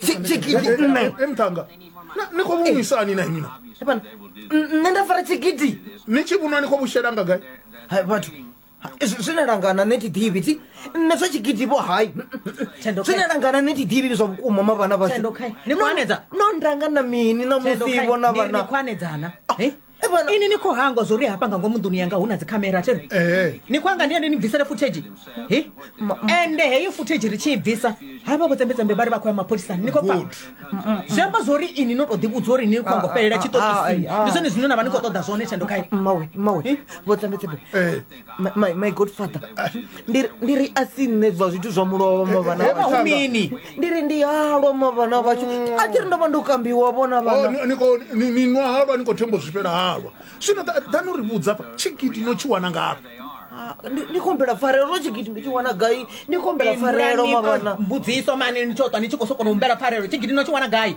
tshigidi nṋe emthanga ni khou vhumisa ani na imi na nṋe nda fara tshigidi ni tshi vhunwa ni khou vhushela nga gai vhathu zwine langana nṋe thi ḓivhi ti nṋe zwa tshigidi vho hai zwine langana nṋe thi ḓivhi zwa vhukuma ma vhana vhashu no ndanga na mini na musivo na vhanakhwanedzana ini ni khou hangwa zwo ri hafha nga ngomu nḓuni yanga hu na dzikhamera thero Ee. ni khou anga ndi ende ni bvisele futhedzhi he ende heyo futhedzhi ri tshi i bvisa havha vho tsembetsembe vha ri vha khou ya mapholisani ni khou pfa Good. zwi amba zwo ri ini no tou ḓivhudzwa uri ni khou anga u fhelela Ah, ah, ah, tshiṱokisini ah, ah. ndi zwone zwine na vha ni khou ṱoḓa zwone thendo khayo mmawe mmawe vho tsambetsebe Eh. Ma- my my godfather ndi ri- ndi ri a si nṋe zwa zwithu zwa mulovha vhana He, vhashu. mini? ndi ri ndi halwa ma vhana vhashu a thi ri ndo vha ndo kambiwa vhona Oh, vhana ni- ni khou- ni- ni nwa halwa ni khou themba u zwifhela halwa zwino ḓa- ḓa no ri vhudza pha tshigidi no tshi wana ngafhi Ah, ndi ndi khombela pfarelo ro tshigidi ndi tshi wana gai ndi khombela pfarelo ma vhana mbudziso mani ni tsho twa ni tshi khou sokono humbela pfarelo tshigidi no tshi wana gai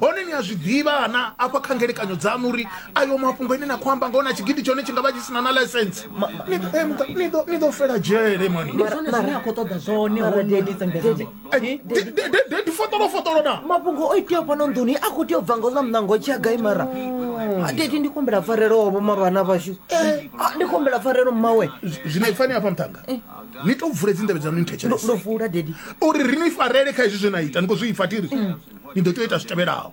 hone ni a zwi ḓivha ana afha kha ngelekanyo dzaṋu uri ayo mafhungo ine na khou amba ngona tshigidi tshone tshi nga vha tshi sina na license ni ḓo fela dzhele manidedi fotolo fotolo na mafhungo o iteaho fhano nḓuni a khou tea u bva ngo ḽa muṋango tshi a gai mara mm. dedi ndi khumbela pfarelo wavho mara vhana vhashu eh. ndi khumbela pfarelo mmawe zwino ifani afha muṱhanga eh. ni to vule dzindavhe dzanu ni thetshelese uri ri ni farele kha hezwi zwe na ita ni khou zwi ifa tiri ni ḓo tea u ita zwi tevhelaho